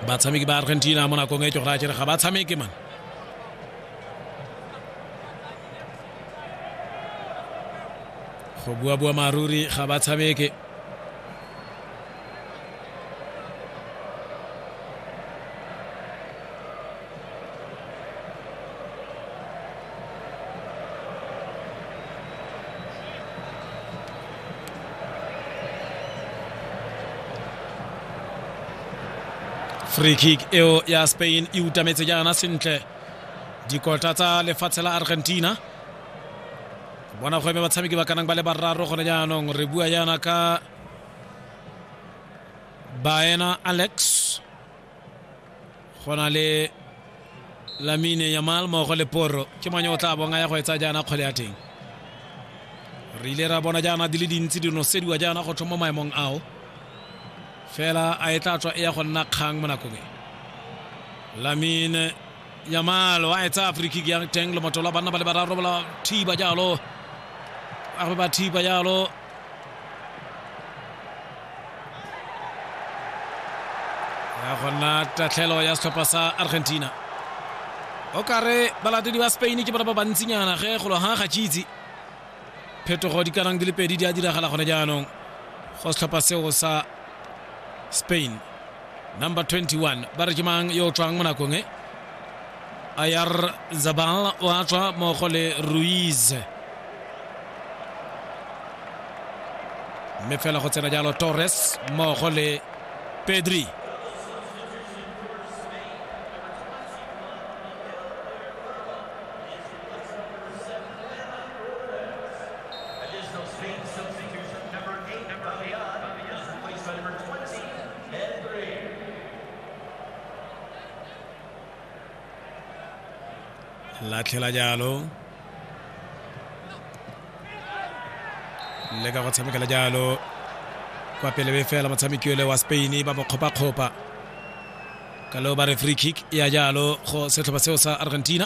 batshameki ba argentina mo nakong e ke gore a kere ga ba tshameke man go buabua maruri ga ba tshameke free kick eo ya spain e utametse jaana sentle dikota tsa lefatshe la argentina bona go eme batshameki ba kanang ba le bararo gone jaanong re bua jaana ka baena alex go na le lamine yamal mogo le poro ke manye o tla bong a ya go etsa jaana kgwele ya teng re ile ra bona jaana di le dintsi di nosediwa jaana go tlhoma maemong ao fela a e tla tswa e ya go nna kgang mo nakong e lamine Yamal wa etsa free kick ya teng le motho la banna ba le bararo ba thiba jalo a re ba thiba jalo ya gona tatlhelo ya setlhopha sa argentina o kare balatedi ba spain ke bona ba bantsinyana ge golo ga ga tšitse phetogo di kanang di le pedi di a diragala gone jaanong go setlhopha seo sa spain number 21 ba re ke mang yo o tswang mo nakong e ayar zabal o a tswa mmogo le ruiz mme fela go tsena jalo torres mmogo le pedri latlhela jalo le ka go tshamekela jalo kwa pele be fela motshameki ole wa spain ba mo kgopakgopa ka leo ba re free kick ya jalo go setlhopha seo sa argentina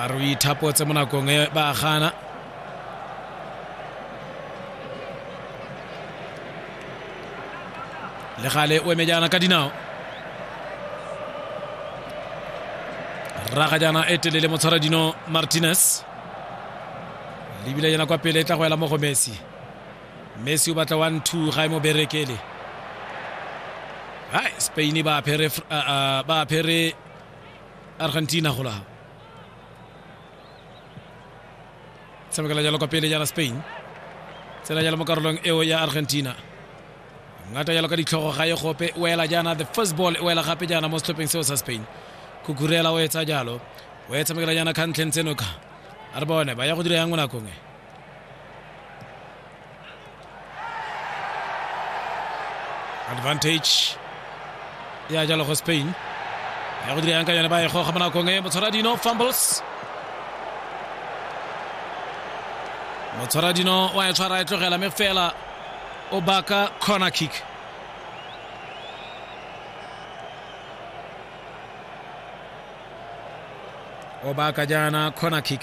a re o ithapotse mo nakong e ba gana le gale o emejana ka dinao raga jana e telele motshwara dino martinez lebile jana kwa pele e tla go ela mo go messi messi o batla one two ga e mo berekele hai spain ba apere ba apere argentina go laga tshamekela jalo kwa pele jana spain tsena jalo mo karolong eo ya argentina ngata jalo ka ditlhogo ga e gope o ela jaana the first ball o ela gape jaana mo setlhopheng seo sa spain kukurela o etsa jalo o e tshamekela jaana khantlheng tsenoka a re bone ba ya go dira yang mo nakong e advantage ya jalo go spain ya go dira yang ka yone ba e goga mo nakong e motshwara dino fumbles motshwara dino wa e tshwara e tlogela me fela o baka corner kick o baka jaana corner kick